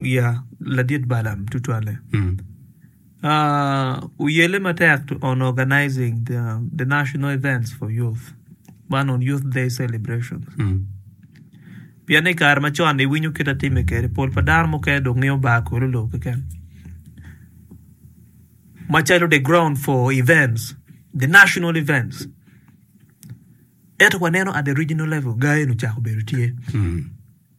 Wiya ladit balam tutwalle. Uh, uyele matek to on organizing the, the national events for youth. Man on Youth Day celebration. Pien i kare ma con iwinyo kit atime kede, pol pa dano mukene dong ngeyo bar kolo lobo keken. Macalo the ground for events, the national events. Ento waneno at the regional level, gayen ocako bedo tye.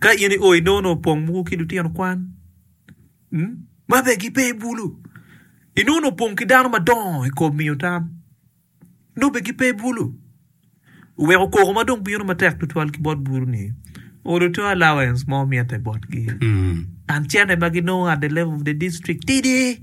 Ka in i odi nongo opong mogo ki lutino kwan ma bene gipe i bulu, i nongo opong ki dano madongo i kom miyo tam nongo bene gipe i bulu, weko koko ma dong bino matek tutwal ki bot bulu ni onongo two allowance mo mitte botgi and cene ma ginongo at the level of the district tidi.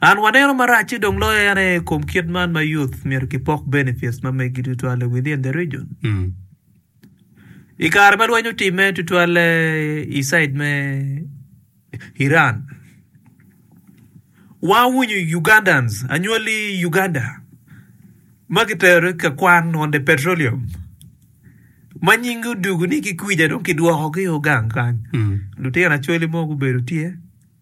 An waneno maracce dong loyo en aye ikom kit man ma youth myero ki pok benefits ma megi tutwalle within the region. Ikare ma lweny otime tutwalle i side me Iran, wa wunyu Ugandans anywali Uganda ma ki tero i ka kwan on the petroleum ma nying gi odugu ni ki kwija dong ki dwoko gi o gang kany, lutino acholi mo gubedo tye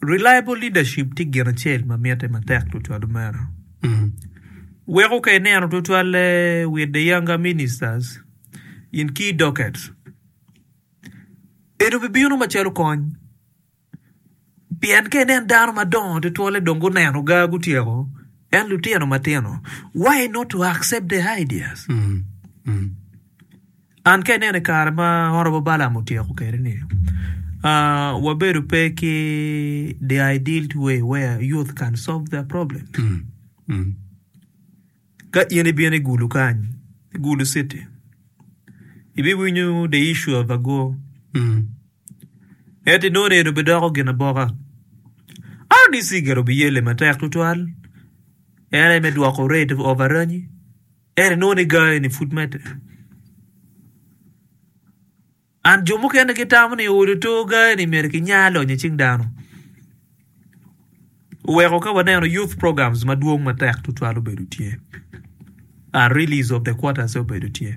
Reliable leadership tye gin acel ma mitte matek tutwal omera. Weko ka ineno tutwalle with the younger ministers in key dockets, eno bibino macalo kony. Pien ka ineno dano madongo tutwalle dong guneno ga gutyeko, en lutino matino, why not to accept their ideas? An ka inena i kare ma oromo Balaam otyeko kede ni wabedo pe ki the ideal way where youth can solve their problem. Ka in ibino i Gulu kany, i Gulu city, ibiwinyo the issue of ago. Ento inongo eno bidoko gin aboka. RDC gire obiyelle matek tutwal. En aye me dwoko rate of aranyi. Ento inongo ni gangi ni pud medde. And jo mukene gitamo ni olo to gangi ni mere ki nya lonyo cing dano. Weko ka waneno youth programs madwong matek tutwal obedo tye. A release of the quarters obedo tye.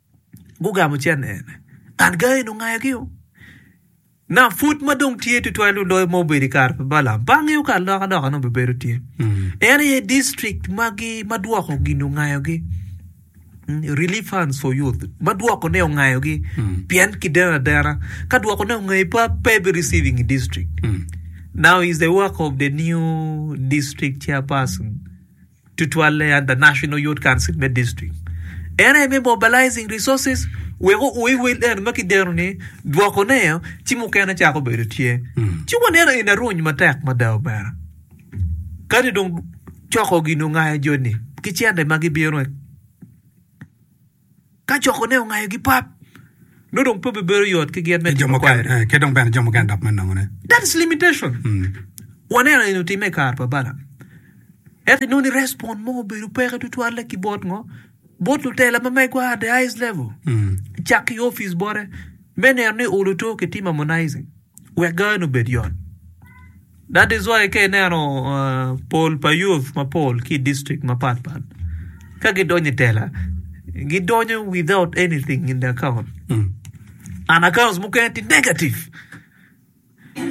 gugamo cente ene, ngat gangi-ni ongayogi-o. Naka pud ma dong tye tutwal nongo loyo ma obedo i kare pa Balaam, bange yo ka alokaloka nongo bibedo tye. En aye district magi ma dwoko gin ongayogi. Mm, Relief funds for youth. Ma dwokone ongayogi. Pien kideno adena. Ka dwokone ongayi pa, pe ibi receiving i district. Now is the work of the new district chairperson. tutwalle under National Youth Council me District. En aye me mobilizing resources weko o iwel en ma kideno ni dwoko ne ci mukene cako bedo tye. Ci waneno in aruny matek mada omera. Kadi dong coko gin ongayo joni ki cente ma gibino Ka cokone ongayogi pat, nongo dong pe bibedo yot ki gin me timo kwayone. Ki dong bene jo mukene dok me nongone. That is limitation. Waneno eni otimme i kare pa Balaam. Ento inongo ni respond mo obedo peke tutwalle ki bot ngo? Bot lutela ma megwa at the highest level. Cak ki i opic bote me neno ni oluto ki tim harmonizing wek gaane obed yot. That is why ka ineno pol pa youth mapol ki district mapat pat ka gidonyo i tela gidonyo without anything in the account and accounts mukene tye negative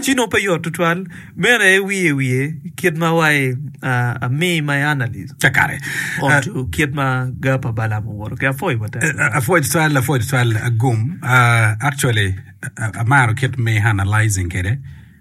ci nongo pe yot tutwal mere wiye wiye kit ma wa i me my analyst onto kit ma gar pa balam owoto ki apwoyo wa tek Apwoc twal apwoc twal agum actually amaro kit ma i analyzing kwede.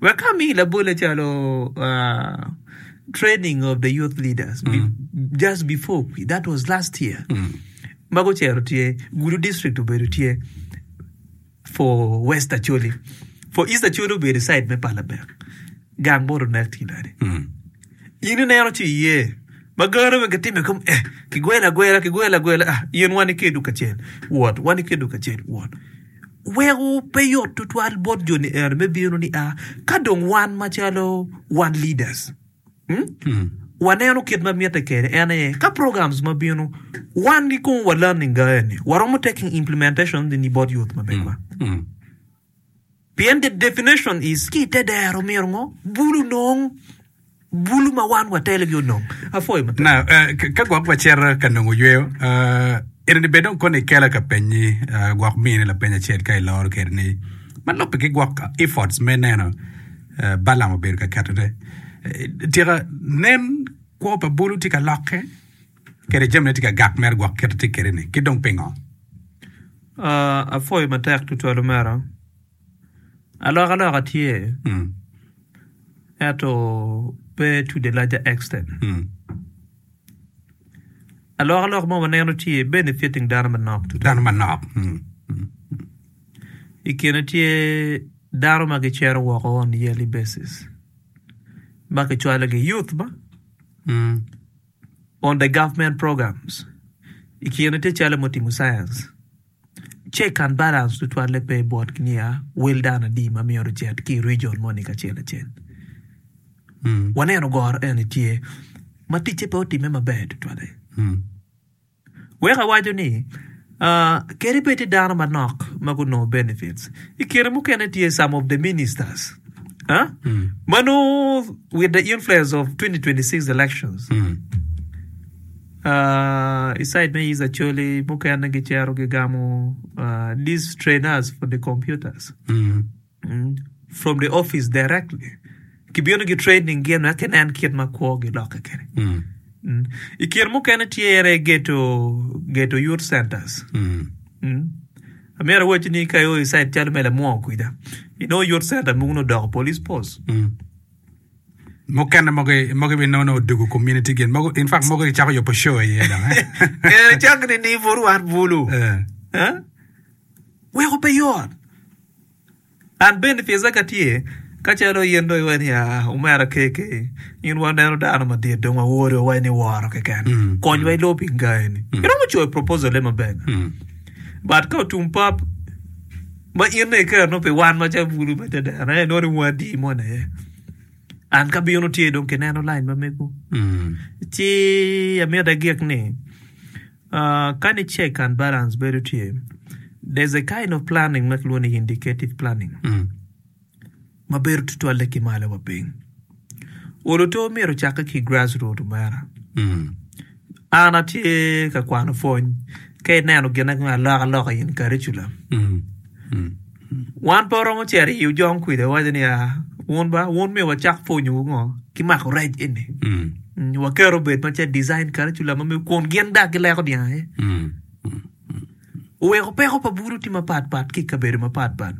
Wek ka amiyi labole calo training of the youth leaders just before that was last year ma gucero tye Gulu district obedo tye for west Acholi for east Acholi obedo i side me Palabel gang bot onek tye nade in ineno ci iye ma gano bene kitime kong eh kigwelo agwela kigwelo agwela ah in wan ikedo kacel wot wan ikedo kacel wot Weko pe yot tutwal bot jo-ni ero me bino ni a ka dong wan macalo wan leaders waneno kit ma mitte kede en aye ka programs ma bino wan gi kong wa learning ga eni waromo taking implementation ni bot youth ma begwa. Pien the definition is ki ite dero myero ngo bulu nong Bulu ma wan watelogi onongo apwoyo matek. Ka gwok wacito ka nongo yweyo, enini bed dong koni ikela ka penyi gwok mine lapeny acel ka iloro kwede ni, ma lubbe ki gwok efforts me neno Balaam obedo ka ketone. Tika nen kwo pa bulu tye ka lokke kede jamine tye ka gak mere gwok kite tye kwede ni, ki dong pingo? Apwoyo matek tutwal omera. Alokaloka tye, ento pe to the larger extent. Alokaloka ma waneno tye benefiting dano manok tutwal. Dano manok. I kine tye dano ma gicero woko on a yearly basis ma kicwalogi youth ba on the government programs. I kine tye calo me timo science. Check and balance tutwalle pe botgi niya, wel dano adi ma myero ocit ki i rijion moni kacel acel. Waneno goro eni tye ma ticce pe otimme maber tutwalle. Weko awaco ni kadi bed tye dano manok ma gunongo benefits, i kine mukene tye some of the ministers ma nongo with the influence of 2026 elections. I side me Yiz Acholi, mukene gicito gigamo these trainers for the computers from the office directly. Kibino gi training gin wek kinen kit ma kwo gilokke kene. I kine mukene tyere geto geto youth centers. Amyero awaci ni ka io i side calo me Lamwongo kwija, inongo youth center mogo nongo odoko police post. mukene mogo mogo ibi nono odugu community gin mogo in fact mogo gicako yopo show iye dong eh cak ni ni buru wan bulu eh eh weko pe yot an bende pisa ka tye ka calo yen do iwe ni ah omera keke in waneno dano madit dong wawori wa ni woro keken Mm. kony wa ilo pinga eni iromo coyo proposal le maber mm. but ka otum pap Ma in dong iketo nongo pi wan macalo bulu me dedena en nongo ni wungu adi moni aye. An ka abino tye dong kineno lain ma mego. Ci amite gik ni ah, kani check and balance bedo tye, there's a kind of planning ma kilwongo ni indicative planning. ma bedo tutwalle ki malo wa piny. Olo to myero ocakke ki grass root omera. Mm. An atye ka kwano pwony ka ineno gin ango aloka loka in curriculum. Mm. Mm. Wan pe romo cero i ojong kwija waco ni ah, wun ba wun myero wacak pwonyo ngo ki mako rec eni. Mm. Mm, Waketo obed ma ce design curriculum ma myero kun gin dag gileko dyang aye. Mm. oweko peko pa bulu tye mapat pat ki ikabedo mapat pat.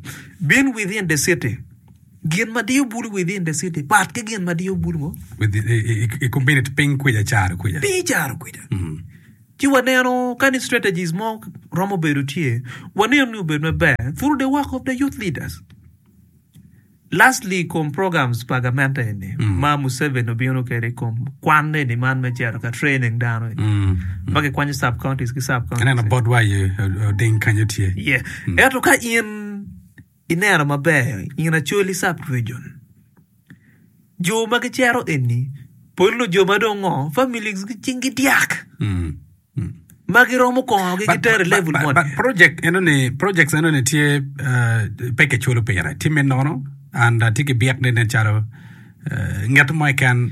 Being within the city, gin ma diyo bulu within the city pat ki gin ma diyo bulu ngo? With, i, i, i, i community piny kwica caro kwica. Piny caro kwica. Mm. Ci waneno ka ni strategies mo romo bedo tye, waneno ni obedo maber through the work of the youth leaders. Lastly i kom programs pa gamente eni ma Museveni obino kwede i kom kwan eni man me cito ka training dano eni ma kikwanyo sub counties ki sub counties. Aneno bot wa aye oding kanyo tye. Yeah. Ento ka in ineno maber in Acholi sub region jo ma gicero eni pol nongo jo ma dong ngo families gi cing gi dyak. ma giromo kongogi but, gitero i level mo but project eno ni projects eno ni tye uh, pe kiculo pire tye me nono and uh, tye ki byek ne nen calo uh, nget mo iken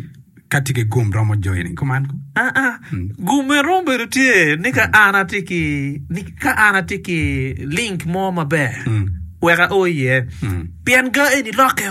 ka tye ki gum romo joini kuman ko ah ah hmm. gume romo bedo tye ni ka hmm. an atye ki ni ka an atye ki link mo maber hmm. weka o iye pien ga eni lokke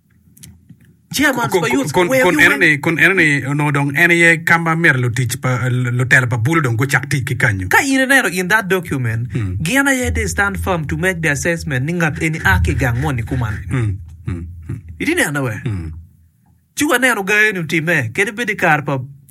Kun enoni onongo dong en aye ka ma myero lutela pa bulu dong gucak tic ki kanyu. Ka in ineno in that document, gin aye this stand firm to make the assessment ni ngat eni a ki i gang moni kuman. Itye neno-e? Ci wanenu ga eni otimme, kadi bed i kare pa.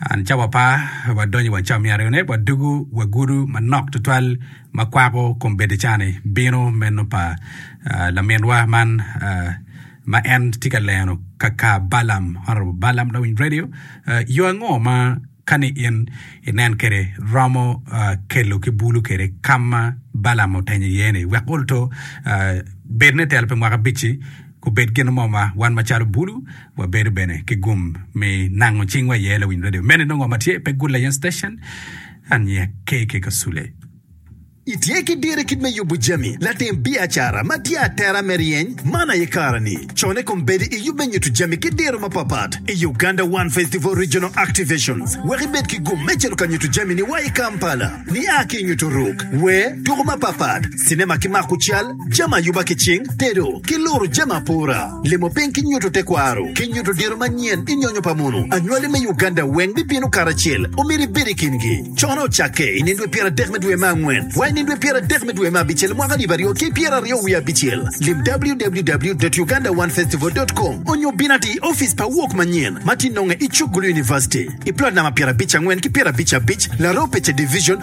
An ca wapa, wadonyo i waca myero one wadugu wagudu manok tutwal ma kwako kom bedo ca-ni, bino meno pa laminwa man ma en tye ka leno kaka Balam, Honorable Balam Lawiny Radio, yo ango ma kani in inen kede romo kelo ki bulu kede kama Balam otenyo iye ni wek olto bed ne telo pi mwaka abic-ci, Obed gin mo ma wan macalo bulu wabedo bene ki gum me nango cingwa iye, lawiny radio mene nongo ma tye pe Good Lion Station, aniya KK Kasule. Itye ki diro kit me yubo jami latim biacara ma tye atera me ryeny man aye kare-ni. Con i kom bedo i yub me nyuto jami ki diro mapapat i Uganda One Festival Regional Activations wek ibed ki gum me cito ka nyuto jami-ni wa i Kampala. Nia ki i nyuto ruk, wer, tuko mapapat, cinema ki mako cal, jami ayuba ki cing, tedo, ki luro jami apora, limo piny ki nyuto tekwaro, ki nyuto diro manyen i nyonyo pa mono. Anywali me Uganda weng bibino karacel. Omyero ibed i kingi. Cono ocakke i nino dwe pyeradek me dwe me angwen wa i nino dwe pyeradek me dwe me abicel mwaka alip aryo ki pyeraryo wiye abicel. Lim www.ugandaonefestival.com onyo bin ati i ofice pa Wok Manyen ma tye nonge i Chukgulu University, i plot namba pyerabic angwen ki pyerabic abic, Laropeche Division,